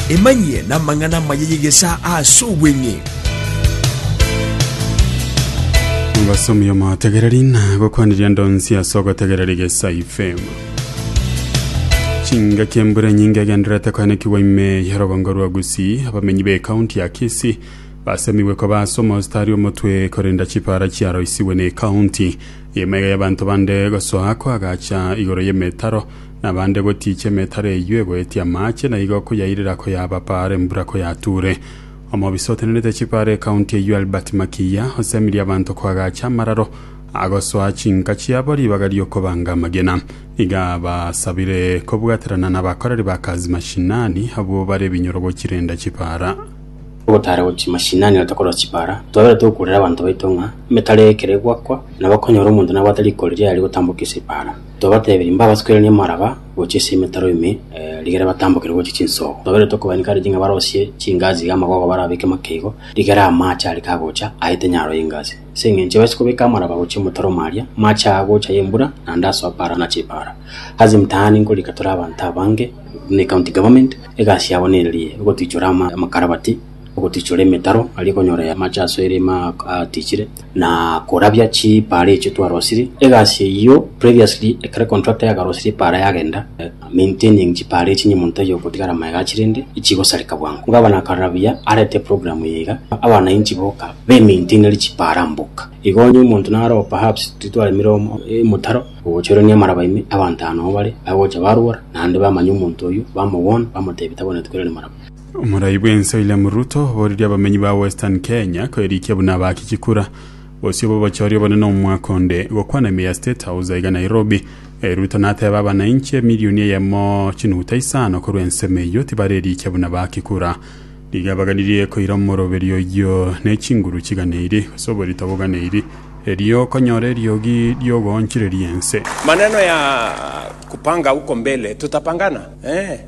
Emanyie namang'ana amaya y'egesaa ase obweng'e. Omosomi omotegereri nagokwanirie ndonsi ase ogotegerera egesa FM. Chingaki embura enyinge egendererete koenekigwa ime ya rogongo rwa Gusii, abamenyi b'ekaunti ya Kisii basemigwe koba ase omostari omotwe korenda chipara chiaroisigwe n'ekaunti. Ime iga y'abanto bande gosoa kwagacha igoro y'emetaro Nabande gotiichia emetaro eyio egoetie amaache, na igo koyairera koyabapaara embura koyatuure. Omobisa otenenete chipaara ekaunti eyio Albert Makiiya osemirie abanto koagacha amararo agosoa chinka chiabo ribaga ri'okobanga amagena. Iga abasabire kobwaterana nabakoreri ba kazi mashinani abwo bare ebinyorogo chirenda chipaara. Ogotaara gochia mashinani na tokorora chipaara, twabeire togokurera abanto baito ng'a emetaro eye ekero egoakwa, nabo okonyora omonto nabwate riko riria riaria gotambokia ase epaara. Tobatebirie mbabasukeranie amaraba gochia ase emetaro ime, rigere batambokere gochia chinsoogo. Tobairete okobanika riri ng'a barosie chingaasi iga amagogo barabeke makeigo, rigere amaache are kagocha aete nyaro y'engaasi. Ase engencho ebasie kobeka amaraba gochia omotaro o maaria, amaache aya agocha ay'embura, naende asoa paara na chipaara. Ase mtaani nkorika tore abanto abange, buna ecounty government, egasi yabo nere eye, egotichora ama, amakarabati, ogotichora emetaro aria konyora amache ase erema atichire, na korabia chipaara echio twarosirie. Egasi eyio previously ekero contractor yakarosirie epaara yagenda, maintaining chipaara echio niyo monto aye ogotigara magega achire inde chigosareka bwango. Gavana akarabia arete program eye iga, abanainchi boka be maintainere chipaara mboka. Igo onye omonto naroba perhaps titwaremire omo emotaro, ogocha ore niamaraba ime, abanto aa noo bare, bagocha barwora, naende bamanya omonto oyio, bamogwona, bamotebia tagwenerete koirania maraba. Omorai bw'ense William Ruto oboririe abamenyi ba Western Kenya kwerikia buna abaaki chikura gose obobochori obonene nomwaka onde gokwana ime ya State House aiga Nairobi. Ruto nateeba abanainchi emilioni eyemo chinuguta isano korwa ensemo eyio tibarerikia buna abaaki kura. Nigo abaganirie koira omoroberio oyio ne chinguru chiganeiri gose oborito boganeiri erio okonyora eriogi riogoonchireria ense. Maneno ya kupanga huko mbele tutapangana ee.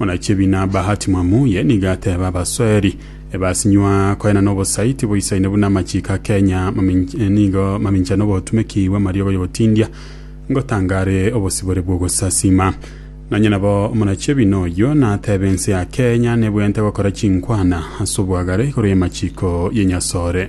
Onachibi na Bahati Mwamuye nigo ateeba abasoeri ebasinywa koenana obosai tiboisaine buna amachiiko a Kenya mamin- eh, nigo mamincha n'obotumeki bw'amariogo y'ogotindia ngotangare obosibore bw'ogosasima. Nonya nabo omonachibi noyio nateeba ense ya Kenya nebweente gokora chinkwana ase oboagare igoro y'amachiiko y'enyasore.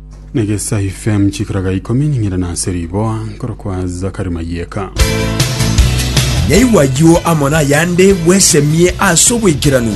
Negesa FM chikaraga ikomi ning'ira nase riboa nkorokwa Zakari Mayeka. Naigwa ayio amo nayande bwesemie ase oboikeranu.